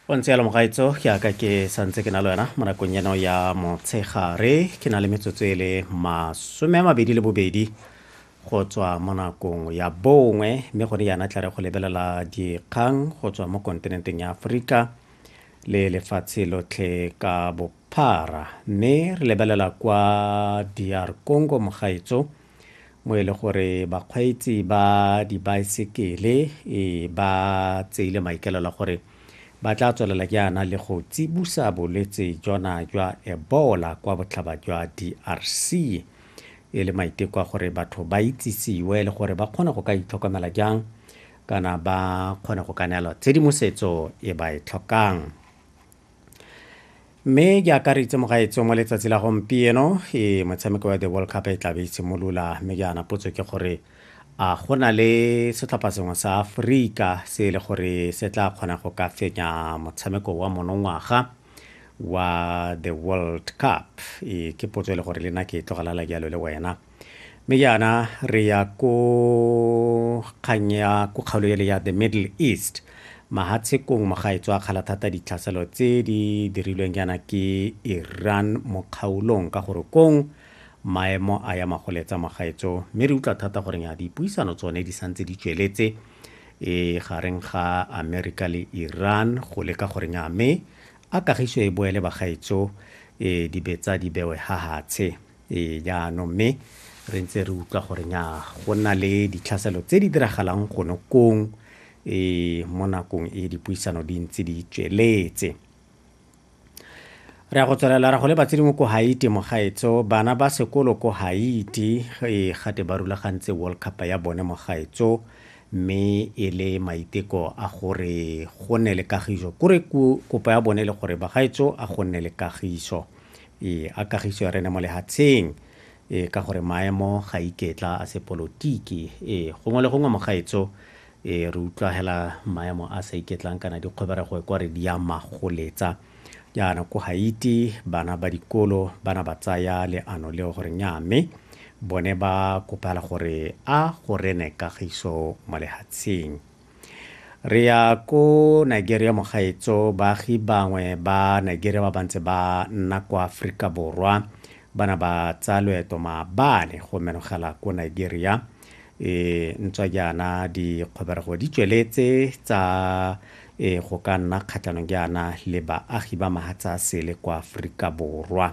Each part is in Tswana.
o ntse yalo mogaetso ke aka ke santse ke na le wena mo nakong eno ya motshegare ke na le metsotso e le masome a mabedi le bobedi go tswa mo nakong ya bongwe mme gone yana tla re go lebelela dikgang go tswa mo kontinenteng ya aforika le lefatshe lotlhe ka bophara mme re lebelela kwa dr congo mogaetso mo e le gore bakgweetsi ba dibaesekele e ba tseile maikaelelo a gore ba tla tswelela jaana le go tsibusa bolwetse jona jwa ebola kwa botlhaba jwa drc e le maiteko a gore batho ba itsisiwe le gore ba kgone go ka itlhokomela jang kana ba kgone go ka neelwa tshedimosetso e ba e tlhokang mme ke akaritse mogaetso mo letsatsi la gompieno e motshameko wa the world cup e tlabe e simolola mme ke ana potso ke gore a go na le setlhopha sengwe sa aforika se e le gore se tla kgona go ka fenya motshameko wa monongwaga wa the world cup e ke potso e le gore le nna ke e tlogalala jalo le wena Mme jaana re ya ko kgang ya ko kgaolo ele ya the middle east mahatshekong mo ga e tswa kgala thata ditlhaselo tse di dirilweng jaana ke iran mo kgaolong ka gore kong maemo a ya magoletsa magaetso mme re utlwa thata gore ya dipuisano tsone di santse di tsweletse e gareng ga amerika le iran go leka gore nya mme a kagiso e boele bagaetso e dibetsa di bewe ha hatshe ee jaanong mme re ntse re utlwa gore nya go nna le ditlhaselo tse di diragalang gone kong e mo nakong e dipuisano di ntse di tsweletse re ya go tswelela ra go le batsedimo ko haiti mogaetso bana ba sekolo ko haiti e gate ba rulagantse world cup ya bone mogaetso mme e le maiteko a gore go nne le kagiso kore kopo ya bone le gore bagaetso a go nne le kagiso E a kagiso ya rene mo lehatsheng. E ka gore maemo ga iketla a se polotiki. E gongwe le gongwe mogaetso e re utlwa hela maemo a sa iketlang kana dikgweberego e kwa re di a magoletsa. Jaana ko Haiti bana ba dikolo bana ba tsaya leano leo gore nya mme bone ba kopela gore a go rene kagiso mo lehatsheng. Re ya ko Nigeria mogaetso, baagi bangwe ba Nigeria ba bantse ba nna kwa Aforika Borwa ba na ba tsaya loeto maabane go menogela ko Nigeria. E ntswa jaana dikgobego di tsweletse tsa e go ka nna kgatlhanong jaana le baagi ba mahatsa sele kwa Aforika Borwa.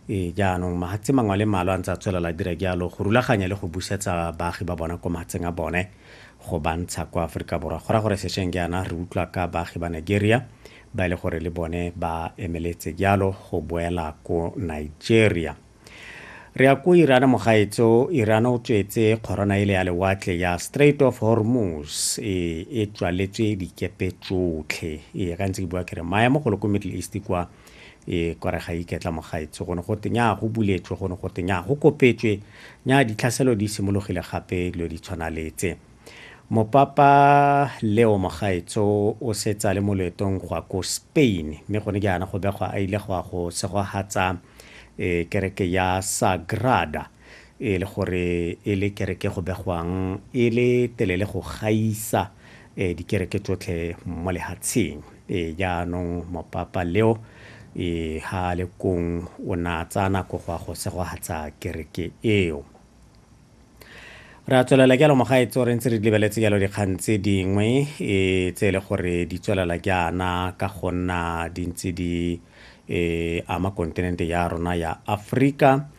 Ee, jaanong mahatse mangwe a le malo a ntse a tswelela dira jalo go rulaganya le go busetsa baagi ba bona kwa mahatseng a bone go bantsha kwa aforika borwa go ra gore sešweng jaana re utlwa ka baagi ba nigeria ba e le gore le bone ba emeletse jalo go boela ko nigeria re ya ko irana mogaetso irana o tswetse kgorona ele ya lewatle ya straight of hormuz e, e tswaletswe dikepe tsotlhe ee ka ntse ke bua kere maemo golo ko middle east kwa e kore ga iketla mogaetsi gone go te nyaa go buletswe gone go te nyaa go kopetswe nyaa ditlhaselo di simologile gape dilo di tshwana letse mopapa leo mogaetso o setsa le mo loetong go ya ko spain mme gone jaana go begwa a ile go ya go segogatsa um kereke ya sagrada e le gore e le kereke go begwang e le telele go gaisa e dikereke tsotlhe mo lehatsheng e jaanong mopapa leo e ha le kong o na tsaya nako go a go segogatsa kereke eo re a tswelela jalo mogaetso re ntse re lebeletse jalo dikgang tse dingwe e tse e le gore di tswelela jaana ka go nna di ntse di e ama kontinente ya rona ya aforika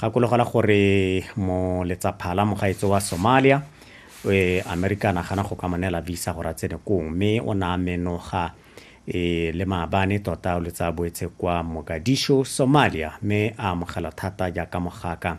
Gakologelwa gore moletsaphala mogaetso wa Somalia e Amerika a nagana go ka mo neela visa gore a tsene kong mme o ne a menoga e le maabane tota o letsa boetse kwa Mogadishu, Somalia mme a amogela thata jaaka mogaka